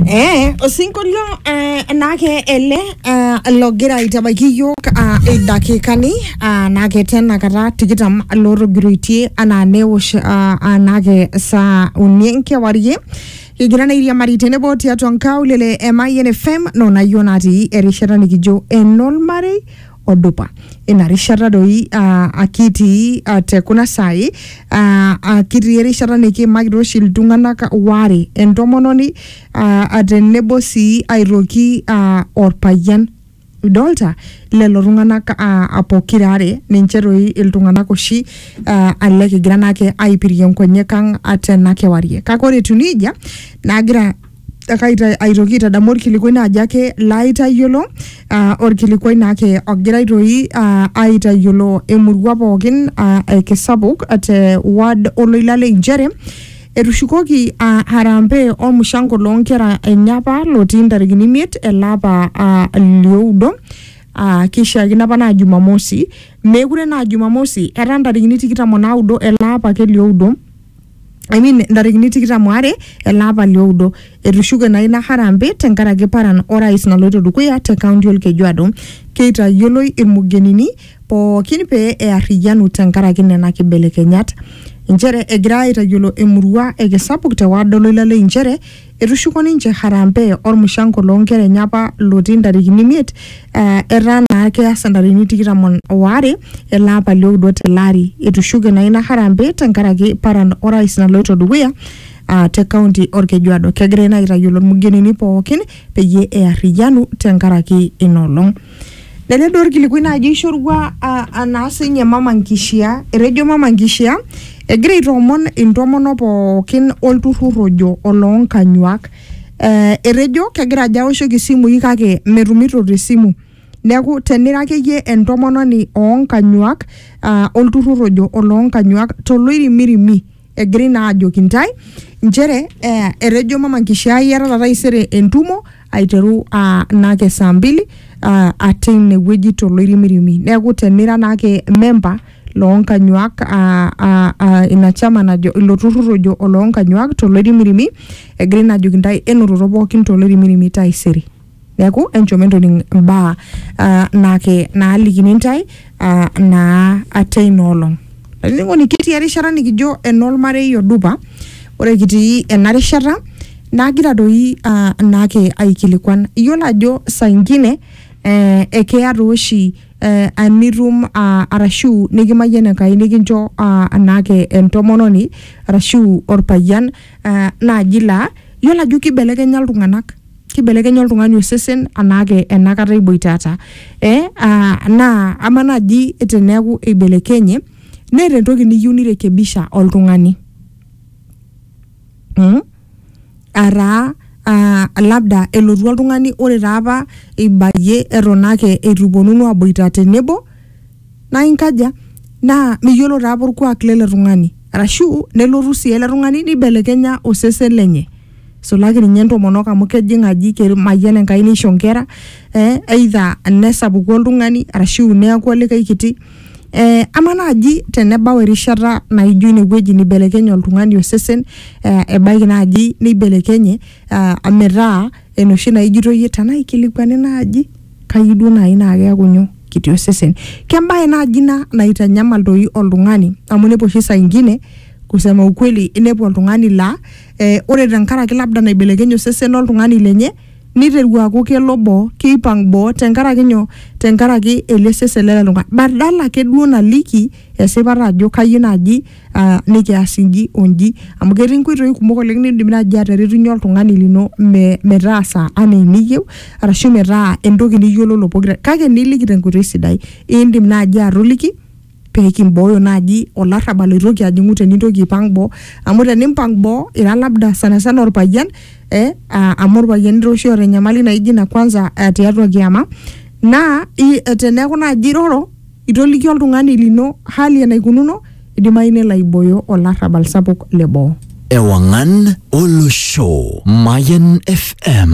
Eh, osinkolio eh, naake ele eh, logira aitabaiki iyiook ah, idakikani ah, naake tena kata tikitam lootogiroitie anaa newosh ah, ah, naake saa uni enkewarie kigira nairiamari tenebo tiatua nkaulele e Mayian FM noonayio natii erishata nikijo enolmarei odupa ina rishata doi aa akitii aa te kuna saai aa aa kitii erishata nikiimakita oshi iltung'anak waare entomononi aa aa tenebo sii aitoki aa orpayian idolta lelo tung'anak aa aa pokira are ninche doi iltung'anak oshi aa ale kigira naake aipirie nkonyek ang' aa tena kewarie kake ore etiu neijia nagira Akaita- aitoki aitadamu orkilikuai naaji ake laaitayiolo ah, orkilikuai naake ogira aitoi ah, aitayiolo emurua pookin ah, ekisapuk te ward oloila le inchere etushukoki ah, harambee ormushango loonkera enye apa lotii ntarikini imiet ele apa ah, lioudo Ah, kishiakino apa naa jumamosi meekure naa jumamosi etaa ntarikini tikitam onaudo ele apa ake lioudo I mean ntarikini tikitam waare ele apa lioudo etushuke naa ina harambee tenkaraki paran orais naloito dukuya te kaunti olkejuado keitayioloi ilmugenini pookin pee earriyianu tenkaraki nena kibelekenyat inchere egira aitayiolo emurua ekisapuk te ward oloila lei inchere Etushuko ninche Harambee olmushango loo nkera enye apa lotii ntarikini imiet eh, etaa naa keasa ntarikini tikitam on- o are ele apa lioudo tele ari. Etushuke naa ina Harambee tenkaraki paran orais naloito dukuya ah, te kaunti Olkejuado. Kegirai naa aitayiolo ilmugenini pookin peyie earriyianu tenkaraki ina olong. Lele duo orkilikuai naaji oishorua naa sinye mama nkishia. Etejo mama nkishia egira aitoomon intomonok pookin olturrur ojo oloonkanyuak. Eh etejo kegira ajo aoshoki isimui kake metumito te simu. Neeku tenira akeyie entomononi oonkanyuak olturrur ojo oloonkanyuak toloirimirimi egirai naa ajoki ntae nchere eh, etejo mama nkishaa iatata taisere entumo aiteru ah, naake saa mbili ah, ate inewueji toloirimirimi neeku tenira naake memba loonkanyuak ah, ah, ah, ina chama najo ilo turrur ojo oloonkanyuak toloirimirimi egirai naa ajoki ntae enototo pookin toloirimirimi taisere neeku enchom entoning imbaa uh, naake naalikini intae uh, naa ate ina olong olainining'oni kitii erishata nikijo enolmarei odupa ore kitii ena rishata nagira doi uh, naake aikilikuan iyiolo ajo saa ingine eh, ekeya tooshi eh, anitum uh, arashu nikimayian enkai nikincho uh, naake entomononi arashu orpayian uh, naaji laa iyiolo ajo kibelekenya iltung'anak kibelekenya oltung'ani osesen anaake enakata iboitata eh, ah, naa ama naaji teneeku eibelekenye neeta entoki niyieu nirekebisha oltung'ani mm? ataa ah, labda elotu oltung'ani ore taa apa ibayie eton ake eitu iponunu aboita tenebo naa inkaja naa miyiolo taa apa orkuak lele tung'ani arashu nelotu sii ele tung'ani nibelekenya osesen lenye isulaki ninye intomonok amu kejing aji kemayian enkai nisho inkera eh, either nesapuku oltung'ani arashu neeku olikae kiti eh, ama naaji tenebau erishata naijo inewueji nibelekenye oltung'ani osesen eh, ebaiki naaji neibelekenye ah, metaa enoshi naijito iyie tenaa ikilikuani naaji kayieu duo naaji naa keeku nyoo kiti osesen kembae naaji ina naitanyamal doi oltung'ani amu inepu oshi saa ingine kusema ukweli inepu oltung'ani laa eh, ore tenkaraki labda naibelekenye osesen loltung'ani lenye niteru aaku kelo boo keipang boo tenkaraki nyoo tenkaraki ele sesen lele tung'ani badala ake duo naliki esipata ajo kayieu naaji uh, nikias inji onji amu ketii inkoitoi kumok oleng nindim naaji ateretunyie oltung'ani lino me, metaasa anaa eniyieu arashu metaa entoki niyiololo pokira kake niliki tenkoitoi sidai indim naaji atoliki pee kimbooyo naaji olarrabal oitoki ajing'u tenintoki aipang boo amu tenimpang boo ira labda sana sana orpayian eh, aa- amu irpayiani taa oshi oota enyamali naijo ina kwanza eh, tiatua kiama naa i- eh, teneeku naaji iroro itoliki oltung'ani lino hali enaikununo idimayu nelo aibooyo olarrabal sapuk le boo Ewangan Olosho. Mayan FM.